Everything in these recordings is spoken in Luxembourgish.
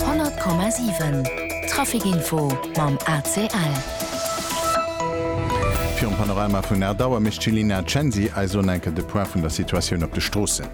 100,7 Trafic Info mam ACL. Virum Panorama vun Erdauer mécht d'Cilina Censi eis elo enke de Point vun der Situatioun op de Stroossen.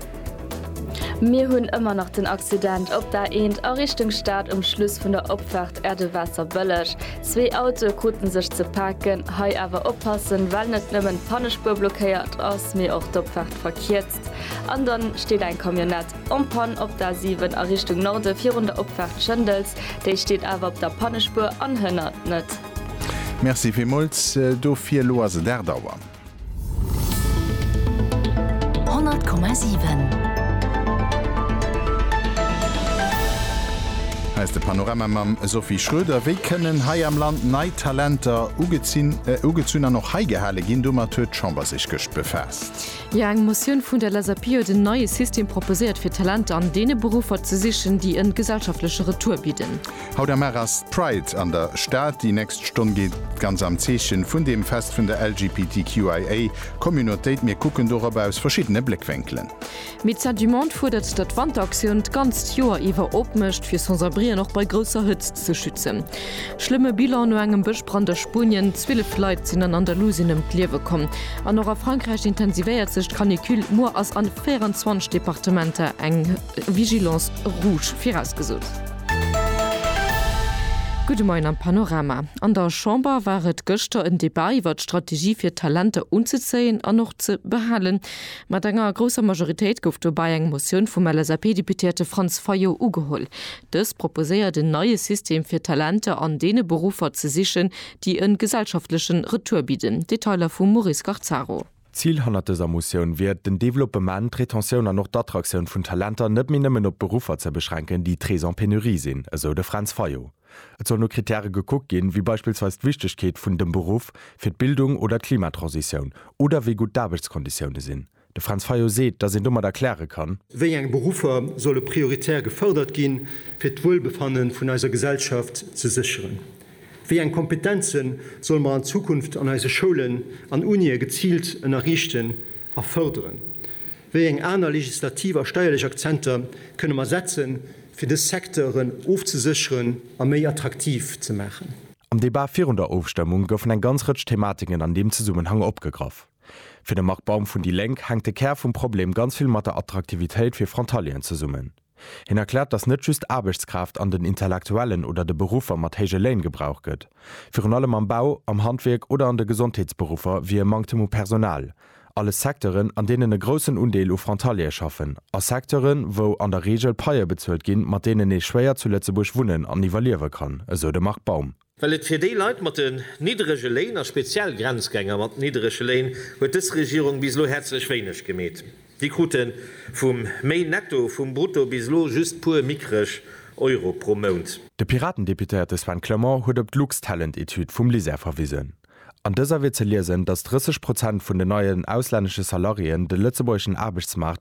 Mir hunn ëmmer nach den Accident op der A1 a Richtung Stad um Schluss vun der Opfaart Erdewasser-Bëlleg. Zwee Autoe krute sech ze paken. Hei awer oppassen, well net nëmmen d'Pannespuer blockéiert ass, mee och d'Opfaart verkierzt an da steet eng Camionnett. En Panne op der 7 a Richtung Norde virun der Opfaart Schëndels. Déi steet awer op der Pannespuer an hënnert net. Merci villmools dofir. Elo ass et 8 Auer. 100,7. Hei ass de Panorama mam Sophie Schroeder. Wéi kënnen hei am Land nei Talenter ugezunn an och heigehale ginn? Domat huet d'Chamber sech gëscht befaasst. Jo, eng Motioun vun der LSAP huet en neie System proposéiert, fir Talenter an deene Beruffer ze sichen, déi en gesellschaftleche Retour bidden. Haut am Mar ass d'Pride an der Stad. Déi nächst Stonn geet ganz am Zeechen vun deem Fest vun der LGBTQIA Communautéit. Mir kucken dorop aus verschiddene Bléckwenkelen. Médecins du Monde fuerdert, datt d'Wanteraktioun d'ganzt Joer iwwer opmécht, fir Sans-abrien och bei grousser Hëtzt ze schützen. Schlëmme Bilan no engem Bëschbrand a Spuenien, 12 Leit sinn an Andalusien ëm d'Liewe komm an och a Frankräich intensivéiert sech d'Canicule. Muer ass a 24 Departementer eng Vigilance rouge virausgesot. Gudde Moien am Panorama. An der Chamber war et gëschter en Debat iwwer d'Strategie fir Talenter unzezéien an och ze behalen. Mat enger grousser Majoritéit gouf dobäi eng Motioun vum LSAP-Deputéierte Franz Fayot ugeholl. Dës proposéiert en neie System fir Talenter an deene Beruffer ze sichen, déi en gesellschaftlechen Retour bidden. Detailer vum Maurice Scarzaro. D'Zil hannert dëser Motioun wier et, den Developpement, d'Retentioun an och d'Attraktioun vun Talenter net méi nëmmen op Beruffer ze beschränken, déi très en pénurie sinn, esou de Fränz Fayot. Et soll no Krittäre gekuckt ginn, wéi beispillsweis d'Wichtegkeet vun dem Beruff fir d'Bildung oder d'Klimatransitioun oder wéi gutt d'Aarbechtskonditioune sinn. De Franz Fayot seet, datt een domat erkläre kann. Wéi eng Beruffer solle prioritär gefërdert ginn, fir d'Wuelbefanne vun eiser Gesellschaft ze sécheren? Wéi eng Kompetenze solle mer an Zukunft an eise Schoulen an Unië geziilt ënnerriichten a fërderen? Wéi eng aner legislativ a steierlech Akzenter kënne mer setzen, fir dës Secteuren ofzesécheren a méi attraktiv ze maachen? Am Debat virun der Ofstëmmung goufen eng ganz Rëtsch Thematiken an deem Zesummenhang opgegraff. Fir de Marc Baum vun déi Lénk hänkt de Kär vum Problem ganz vill mat der Attraktivitéit fir Frontalieren zesummen. Hien erkläert, datt net just Aarbechtskraaft an den Intellektuellen oder de Beruffer mat héije Léin gebraucht gëtt. Virun allem am Bau, am Handwierk oder an de Gesondheetsberuffer wier e Manktem u Personal. Alles Secteuren, an deenen e groussen Undeel u Frontaliere schaffen a Secteuren, wou an der Reegel Paië bezuelt ginn, mat deenen ee schwéier zu Lëtzebuerg wunnen an iwwerliewe kann, esou de Marc Baum. Well et fir déi Leit mat den nidderege Léin, a speziell Grenzgänger mat nidderege Léin, huet dës Regierung bis elo häerzlech wéineg gemeet. Déi krute vum méi Netto vum Brutto bis elo just puer mickreg Euro pro Mount. De Piraten-Deputéierte Sven Clement huet op d'Lux-Talent-Etüd vum LISER verwisen. An dëser wier ze liesen, datt 30 Prozent vun den neien auslännesche Salariéen de lëtzebuergeschen Aarbechtsmaart